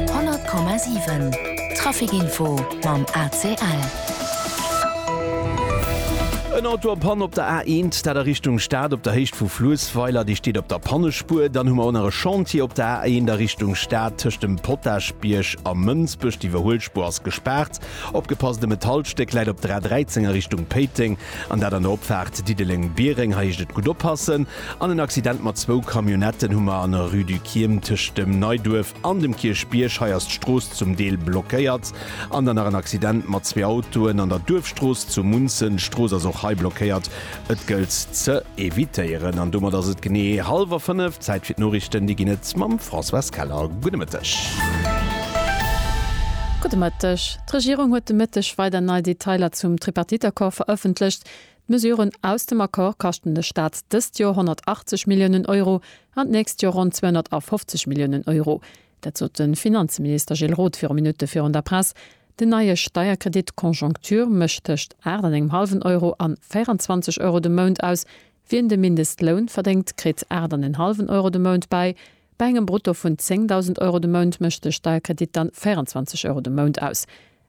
100,7 Traficinfo mam ACL. En Auto am Pann op der A1, dat a Richtung Stad op der Héicht vu Fluessweiler. Déi steet op der Pannespuer. Dann hu mer och nach e Chantier op der A1 a Richtung Stad tëscht dem Potagebierg a Mënsbech. D'Iwwerhuelspuer ass gespaart. Opgepasst, e Metallstéck läit op der A13 a Richtung Péiteng. An dat an der Opfaart Diddeleng-Biereng. Hei heescht et gutt oppassen. An en Accident mat zwou Camionnetten hu mer an der Rue du Kiirm tëscht dem Neiduerf an dem Kierchbierg. Hei ass d'Strooss zum Deel blockéiert. An dann nach en Accident mat zwee Autoen an der Duerfstrooss zu Munzen. D'Strooss ass och hei blockéiert. Et gëllt ze evitéieren. An domat ass et genee hallwer fënnef. Zäit fir d'Noriichten. Déi ginn et mam Françoise Keller. Gudde Mëtteg. Gudde Mëtteg. D'Regierung huet de Mëtteg weider nei Detailer zum Tripartite-Accord verëffentlecht. D'Mesuren aus dem Accord kaschten de Staat dëst Joer 180 Milliounen Euro an d'nächst Joer ronn 250 Milliounen Euro. Dat sot de Finanzminister Gilles Roth viru Minutte virun der Press. Den neie Steierkredit Conjoncture mécht tëscht 8 an engem hallwen Euro an 24 Euro de Mount aus. Wien de Mindestloun verdéngt, kritt 8 an en hallwen Euro de Mount bäi. Bei engem Brutto vun 10.000 Euro de Mount mécht de Steierkredit dann 24 Euro de Mount aus.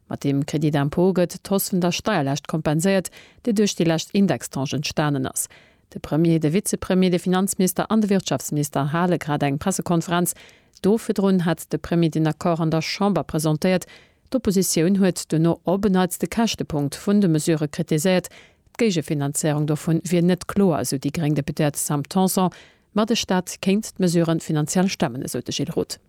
Mat deem Crédit d'impôt gëtt d'Hausse vun der Steierlaascht kompenséiert, déi duerch déi lescht Indextranche entstanen ass. De Premier, de Vizepremier, de Finanzminister an de Wirtschaftsminister hale grad eng Pressekonferenz. Do virdrun hat de Premier den Accord an der Chamber presentéiert. D'Oppositioun huet duerno op en Neits de Käschtepunkt vun de Mesurë kritiséiert. D'Géigefinanzéierung dovun wier net kloer, esou déi gréng Deputéiert Sam Tanson. Ma de Staat kéint d'Mesure finanziell stemmen, esou de Gilles Roth.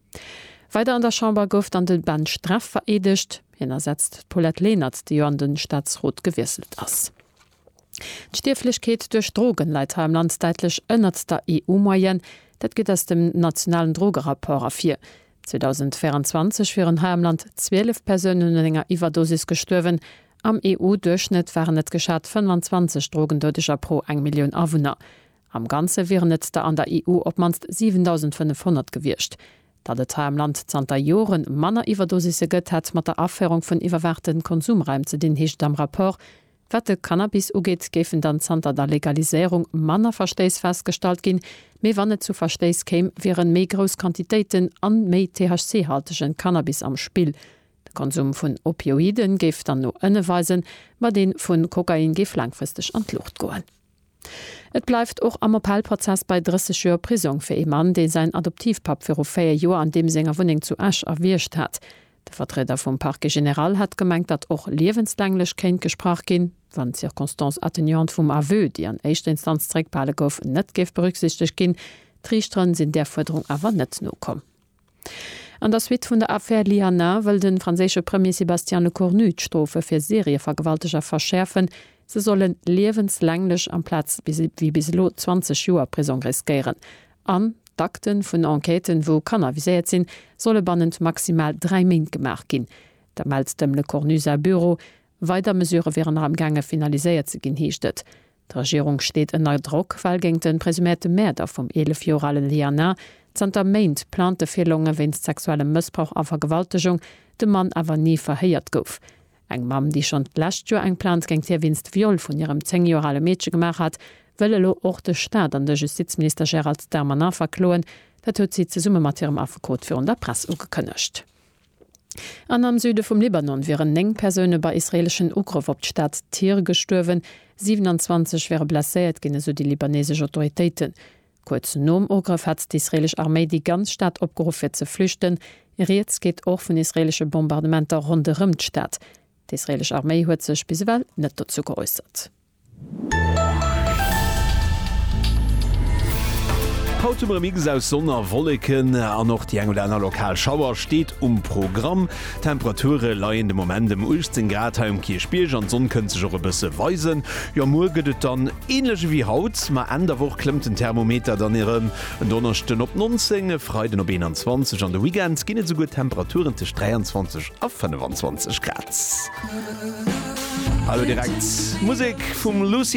Weider an der Chamber gouf dann de Ben Streff vereedegt. Hien ersetzt d'Paulette Lenert, déi jo an de Staatsrot gewiesselt ass. D'Stierflechkeet duerch Drogen läit hei am Land däitlech ënnert der EU-Moyenne. Dat geet aus dem nationalen Drogerapport ervir. 2024 wieren hei am Land 12 Persounen un enger Iwwerdosis gestuerwen. Am EU-Duerchschnëtt waren et geschat 25 Drogendoudeger pro eng Millioun Awunner. Am Ganze wieren et der an der EU op d'mannst 7.500 gewiescht. Datt et hei am Land zanter Jore manner Iwwerdosisse gëtt, hätt mat der Aféierung vun iwwerwaachte Konsumraim ze dinn, heescht et am Rapport. Wat de Cannabis ugeet, géifen dann zanter der Legaliséierung manner Verstéiss festgestallt ginn. Mee wann et zu Verstéiss kéim, wieren méi grouss Quantitéiten an méi THC-haltegen Cannabis am Spill. De Konsum vun Opioiden géif dann no ënne weisen, ma deen vun Kokain géif laangfristeg an d'Luucht goen. Et bleift och am Appellprozess bei 30 Joer Prisong fir ee Mann, dee säin Adoptivpapp viru 4 Joer an deem senger Wunneng zu Esch erwiergt hat. De Vertrieder vum Parquet général hätt gemengt, datt och liewenslänglech kéint gesprach ginn, wann d'Circonstances atténuantes vum Aveu, déi an éischter Instanz zeréckbehale gouf, net géif berücksichtegt ginn. D'Riichteren sinn där Fuerderung awer net nokomm. An der Suite vun der Affär Liana wëll de franséische Premier Sébastien Lecornu d'Strofe fir Serievergewalteger verschäerfen. Se sollen liewenslänglech amplaz wéi bis elo 20 Joer Prisong riskéieren. An d'Akte vun Enquêten, wou Kanner viséiert sinn, solle bannent maximal dräi Méint gemaach ginn. Dat mellt dem Lecornu säi Büro. Weider Mesurë wieren nach am gaange finaliséiert ze ginn, heescht et. D'Regierung steet ënner Drock, well géint de presüméierte Mäerder vum 11 Joer ale Liana zanter Méint Plainte virlongen, wéinst sexuellem Mëssbrauch a Vergewaltegung, de Mann awer ni verhéiert gouf. Eng Mamm, déi schonn d'lescht Joer eng Plainte géint hie wéinst Viol vun hirem 10 Joer ale Meedche gemaach hat, wëll elo och de Staat an de Justizminister Gérald Darmanin verkloen. Dat huet si zesumme mat hirem Affekot virun der Press ugekënnegt. An am Süde vum Libanon wieren 9 Persoune bei israeeleschen Ugrëff op d'Stad Tyr gestuerwen, 27 ware blesséiert ginn, esou déi libaneesesch Autoritéiten. Kuerz nom Ugrëff hat d'israeelesch Arméi déi ganz Stad opgeruff fir ze flüchten. Rieds geet och vun israeelesche Bombardementer ronderëm d'Stad. D'israeelesch Arméi huet sech bis ewell net dozou geäussert. Haut hu mer e Mix aus Sonn a Wolleken an och déi eng oder aner lokal Schauer steet um Programm. D'Temperature leien de Moment ëm 18 Grad hei um Kierchbierg an d'Sonn kënnt sech och e bësse weisen. Jo muer gëtt et dann änlech ewéi haut, ma Enn der Woch klëmmt den Thermometer dann erëm, en Donneschden op 19, e Freiden op 21 an de Weekend ginn et esouguer Temperaturen tëscht 23 a 25 Grad. Hallo direkt Musek vum Lucy.